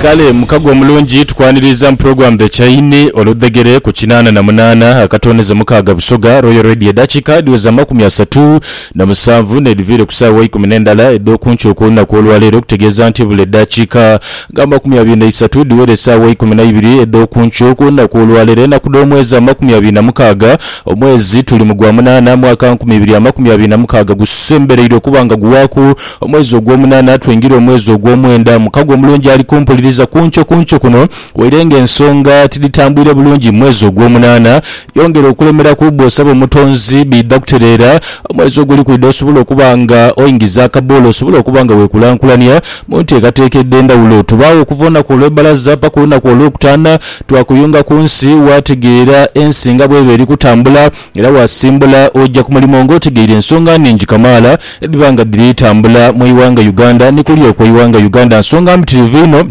Kale mukago omulungi tukwaniriiza mu program The Chain oludhegere ku kinaana na munaana akatooneze mukaaga Busoga Royal Radio edhakiika edhiweza amakumi asatu na musanvu n'edhiviire ku saawa eikumi n'endala edh'okunkyo okw'olunaku olwaleero okutegeeza nti buli eddakiika nga amakumi abiri na isatu dhiwera esaawa eikumi na ibiri edh'okunkyo okw'olunaku olwaleero enaku dh'omwezi amakumi abiri na mukaaga omwezi tuli mu gwa munaana mwaka nkumi ibiri amakumi abiri na mukaaga gusembereirwe okuba nga guwaaku Omwezi ogw'omunaana twingire omwezi ogw'omwenda. Mukago omulungi ali kumpuliriza ku nkyo ku nkyo kuno. Waire ng'ensonga tidhitambwire bulungi mu mwezi ogw'omunaana, yongera okulemeraku. Bw'osaba Omutonzi, biidha kutereera. Omwezi oguli kwidha osobole okuba nga oingiza akaboola, osobole okuba nga weekulankulania mu nteekateeka edh'endhawulo. Tubaagho okuva olunaku olw'ebbalaza paka olunaku Olwokutaana twakuyunga ku nsi, waategeera ensi nga bw'eba eri kutambula. Era waasimbula oja ku mulimo nga otegeire ensonga nhingi kamaala edhiba nga dhiri tambula mu ighanga Uganda ni kuli okwo ighanga Uganda, nsonga mbitirivu inho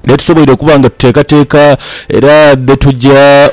dhetusoboire okuba nga tuteekateeka era dhetuja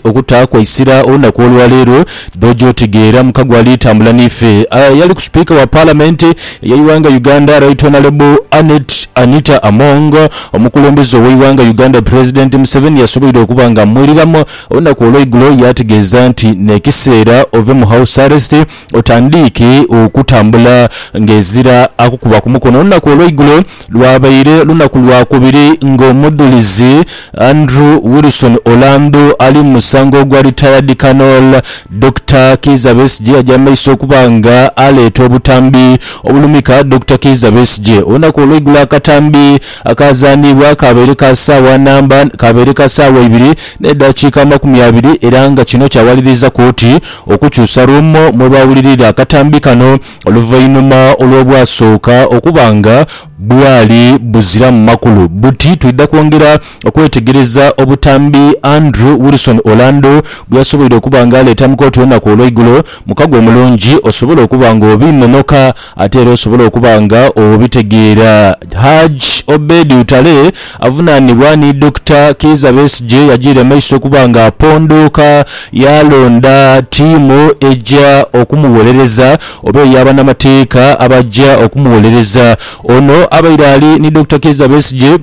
okutaaku eisira olunaku olwaleero dh'oja otegeera mu kago ali tambula n'ife. Eyaliku Sipiika wa Palamenti ey'eighanga Uganda Right Honourable Annet Anita Among, omukulembeze ow'eighanga Uganda President Museveni yasoboire okuba nga amwiriramu, Olunaku olweigulo yaategeeza nti n'ekiseera ove mu house arrest otandiike okutambula ng'ezira akukuba ku mukono. Olunaku olweigulo lwabaire lunaku Lwakubiri ng'omudhulizi Andrew Wilson Olandu ali mu musango ogwa Retired Colonel Dokita Kiiza Besigye aja mu maiso okuba nga aleeta obutambi obulumika Dokita Kiiza Besigye. Olunaku olweigulo akatambi Akaazaanibwa kaabaire ka saawa namba kaabaire ka saawa ibiri n'edhakiika amakumi abiri era nga kino kyawaliriza kooti okukyusa ruumu mwe baawulirira akatambi kano oluvainhuma olw'obwasooka okuba nga bwali buziramu makulu buti. Twidha kwongera okwetegereza obutambi Andrew Wilson Orlando bwe yasoboire okuba nga aleeta mu kooti olunaku olw'eigulo. Mukago omulungi osobola okuba ng'obiinonoka. Ate era osobole okuba nga obitegeera Hajj Obed Lutale avunaanibwa ni Dokita Kiiza Besigye yajiira emaiso okuba nga apondooka yaalonda ttiimu eja okumuwolereza oba eya banamateeka abaja okumuwolereza. Ono abaire ali ni Dokita Kiiza Besigye,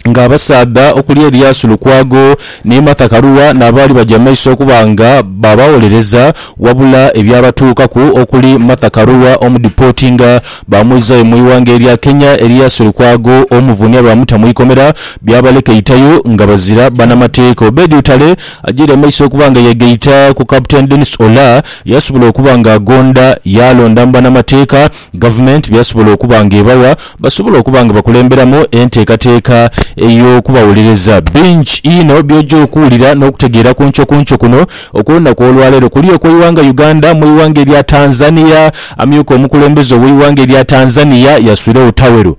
nga abasaadha okuli Eliyasu Lukwago ni Martha Karua n'abaali baja mu maiso okuba nga baabawolereza wabula ebyabatuukaku okuli Martha Karua omudipotinga baamwizayo mu ighanga erya Kenya, Eliyasu Lukwago omuvunia baamuta mu ikomera byabaleka eitayo nga bazira banamateeka. Obed Utale ajaire mu maiso okuba nga yeegaita ku Captain Denis Olah yasobola okuba nga agonda yaalonda mu banamateeka Gavumenti by'esobola okuba ng'ebawa, basobola okuba nga bakulemberamu enteekateeka ey'okubawolereza. Bingi inho by'oja okuwulira n'okutegeera ku nkyo ku nkyo kuno okw'olunaku olwaleero. Kuli okw'eighanga Uganda, mu ighanga erya Tanzania, amyuka omukulembeze ow'eighanga erya Tanzania yaswiregho tawero.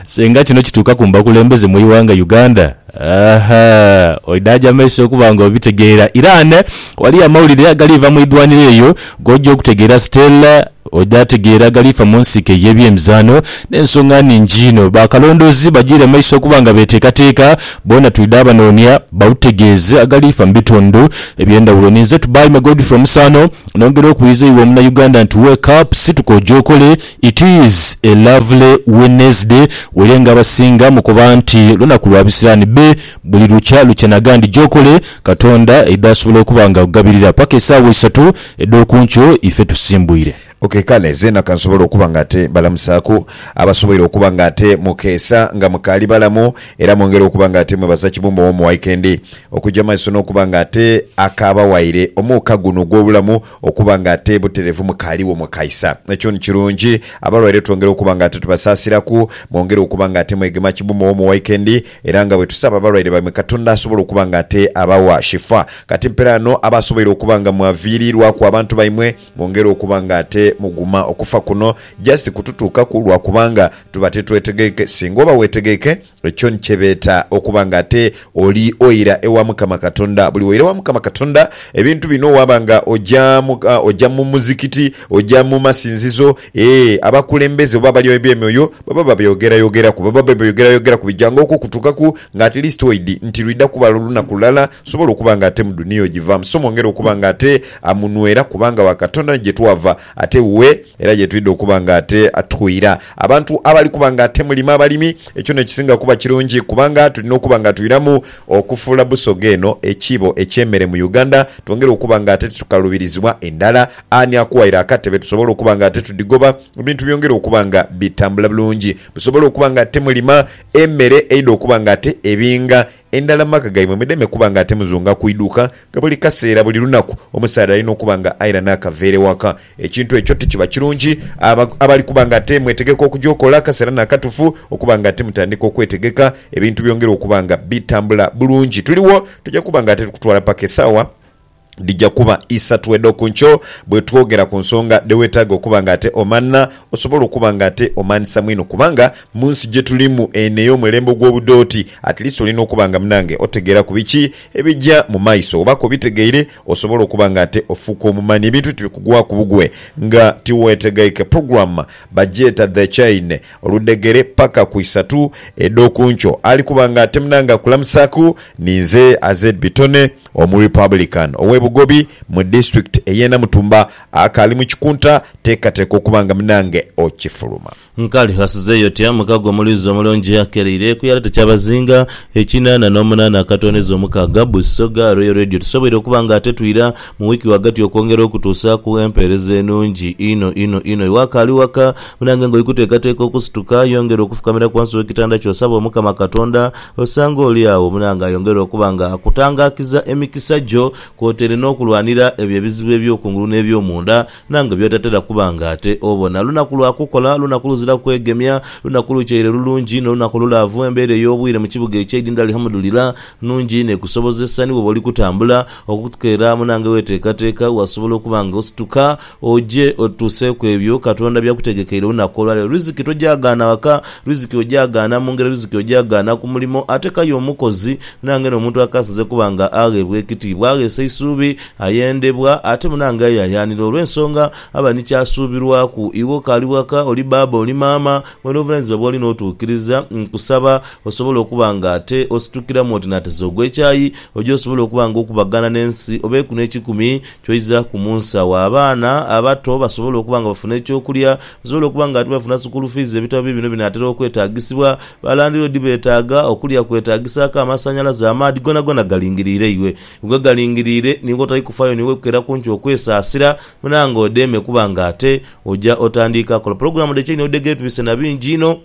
Senga kino kituuka ku mbakulembeze mu ighanga Uganda? Ahaa oidhaje amaiso okuba nga obitegeera. Iran waliyo amawulire agaliiva mu idhwaniro eyo goja okutegeera Stella oidha ategeera agaliifa mu nsiike ye byemizaano nensonga nhingi inho. Ba kalondoozi bajiire maiso okuba nga beteekateeka boona twidha abanoonia bautegeeze agaliifa mu bitundu ebyendhawulo. Ninze Tubaime Godfrey Omusaano nongera okuwiiza iwe omuna Uganda nti wake up situka oje okole It is a lovely Wednesday were nga abasinga mukoba nti lunaku lwa bisirani be buli lukya lukya nagandi gyokole katonda aidha asobola okuba nga akugabirira paka esaawa isatu edhokunkyo ife tusimbwire. Ok kale zeena kansobole okuba nga ate mbalamusaaku abasoboire okuba nga ate mukeesa nga mukaali balamu era mwongere okuba nga ate mwebaza Kibumba ow'omu Wikendi okugya mumaiso n'okuba nga ate akaabawaire omuuka guno ogw'obulamu Okuba nga ate buterevu mukaaligho mwe kaisa. Ekyo ni kirungi. Abalwaire twongera okuba nga ate tubasaasiraku. Mwongere okuba nga ate mwegema kimu mu Home Wikendi, era nga bwe tusaba abalwaire baimwe Katonda asobole okuba nga ate abawa shifa. Kati mperaano, abo asoboire okuba nga mwaviiriirwaku abantu baimwe, mwongere okuba nga ate muguma. Okufa kuno just kututuukaku lwa kubanga tuba titwetegeike. Singa oba weetegeike, Ekyo ni kye beeta okuba nga ate oli oira ewa Mukama Katonda. Buli woira ewa Mukama Katonda, ebintu bino waba nga oja mu, oja mu muzikiti, oja mu masinzizo, ee, abakulembeze oba abali eby'emyoyo baba babyogerayogeraku. Baba babyogerayogeraku bijanga okwo okutuukaku nga at least oidhi nti lwidha kuba lunaku lulala nsobole okuba nga ate mu dunia ojivaamu. So mwongere okuba nga ate munwera kubanga wa Katonda ni gye twava. Ate wuwe era ye twidha okuba nga ate atwira abantu abali kuba nga ate mulima abalimi. Ekyo n'ekisinga kuba kirungi kubanga tulina okuba nga twiramu okufuula Busoga eno ekiibo eky'emere mu Uganda twongere okuba nga ate titukaluubirizibwa endhala. Ani akuwaire akatebe tusobole okuba nga ate tudhigoba ebintu byongere okuba nga bitambula bulungi busobole okuba nga ate mulima emere eidha okuba nga ate ebinga Endala mu maka gaimwe mudeme kuba nga ate muzunga ku iduuka nga buli kaseera buli lunaku omusaadha alina okuba nga aira n'akaveera ewaka. Ekintu ekyo tikiba kirungi. Abo abali kuba nga ate mwetegeka okuja okola, akaseera n'akatufu okuba nga ate mutandika okwetegeka, ebintu byongere okuba nga bitambula bulungi. Tuligho, tuja kuba nga ate tukutwala paka esaawa. dhija kuba isatu edh'oku nkyo bwe twogera ku nsonga dhe weetaaga okuba ng'ate omanha osobola okuba ng'ate omanhisa mwino kubanga mu nsi gye tulimu eno ey'omulembe ogw'obudooti at least olina okuba nga munange otegeeraku biki ebija mu maiso. Oba k'obitegeire osobola okuba ng'ate ofuuka omumanhi ebintu tibikugwaku bugwe nga tiweetegeike. Program bagyeta The Chain. Oludhegere paka ku isatu edh'oku nkyo ali kuba nga atemna nga akulamusaaku ni nze Azed Bitone omu Republican ow'e Bugobi mu disitulikiti ey'e Namutumba akaali mu kikunta teekateeka okuba nga munange okifuluma. Nkali ghasizeeyo otya mu kago omulwizi omulungi akereire ku yaleta kyabazinga ekinana n'omunana akatooneza omukaaga Busoga Royal Radio tusoboire okuba nga atetwira Mu wiiki ghagati okwongera okutuusaaku empeereza enungi inho inho inho. Iwe akaali waka, munange ng'oli kuteekateeka okusituka, yongera okufukamiraku ghansi w'ekitanda kyo osabe Omukama Katonda. Osanga oli agho munange ayongere okuba nga akutangaakiza emikisa gyo, kwotaire n'okulwanira ebyo ebizibu eby'okungulu n'eby'omunda. Nange by'otatera kuba nga ate obona. Lunaku lwa kukola, lunaku luziraku kwegemya, lunaku lutyaire lulungi, n'olunaku olulaavu. Embeera ey'obwire mu kibuga eky'eidinda Alihamudulira nnungi inho ekusobozesa ni bw'oba oli kutambula okutukeera mu nange weeteekateeka, wasobola okuba nga osituka oje otutuuseeku ebyo Katonda by'akutegekeire olunaku olwa leero. Riziki togyagaana waka, riziki ogyagaana mu ngeri, riziki ogyagaana ku mulimo. Ate k'aye omukozi, nange n'omuntu akaasinze kuba nga agheebwa ekitiibwa, agheesa eisuubi, Ayendebwa ate munange ayayaanira olw'ensonga aba ni ky'asuubirwaku. Iwe okaali waka, oli baaba, oli maama, ng'oli n'obuvunaanyizibwa bw'oli n'otuukiriza, nkusaba osobole okuba nga ate ositukiramu oti naateza ogw'ekyayi oje osobole okuba nga okubagana n'ensi oba eku n'ekikumi ky'oizaaku mu nsi agho abaana abato basobole okuba nga bafuna eky'okulya, basobole okuba nga ate bafuna sukuulu fiizi. Ebitabo biibino binaatera okwetaagisibwa. Ba landiloodi beetaaga, okulya kwetagisaaku, amasannyalaze, amaadhi, goonagona galingiriire iwe. Nga ogalingiriire ni wotali kufaayo ni wekukera kunki okwesaasira, mala nga odheeme kuba nga ate oja otandiika kola pulogulaamu dhe chaini odhege tubise na bingi inho.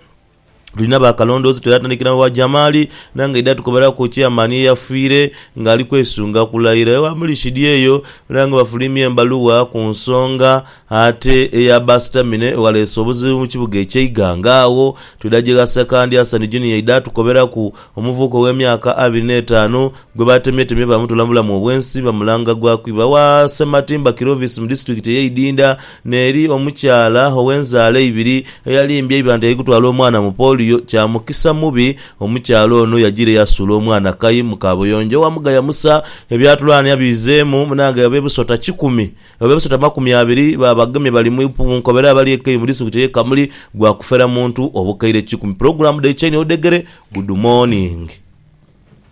Tulina ba kalondoozi twere atandikira mu ba Jamali nange aidha tukoberaku Chairman eyafiire nga ali kwesunga kulayira ewa Murishidi eyo era nga bafuliimya embaluwa ku nsonga Ate eya Basitamine ewaleese obuzibu mu kibuga ekye Iganga agho twidha gye gha Sekandi Asani Junior aidha atukoberaku, omuvubuka ow'emyaka abiri n'etaanu gwe baatemyetemye baamutoola mu bulamu obw'ensi bamulanga gwa kwiba wa Ssematimba Kirovisi mu disitulikiti ey'e Idinda n'eri omukyala ow'enzaala eibiri eyalimbye eiba nti aikutwala omwana mu polio. Kya mukisa mubi omukyala ono yajiire yasuula omwana kai mu kaabuyonjo owa Mugaya Musa ebyatulaanhia biizeemu munange ab'e Busota kikumi Abo be basatu amakumi abiri ba bagemye bali mu ipu Bunkobere abali e Kei mu disitulikiti ey'e Kamuli gwa kufera muntu obukaire kikumi. Pulogulaamu dhaikya inho odhegere, Good Morning.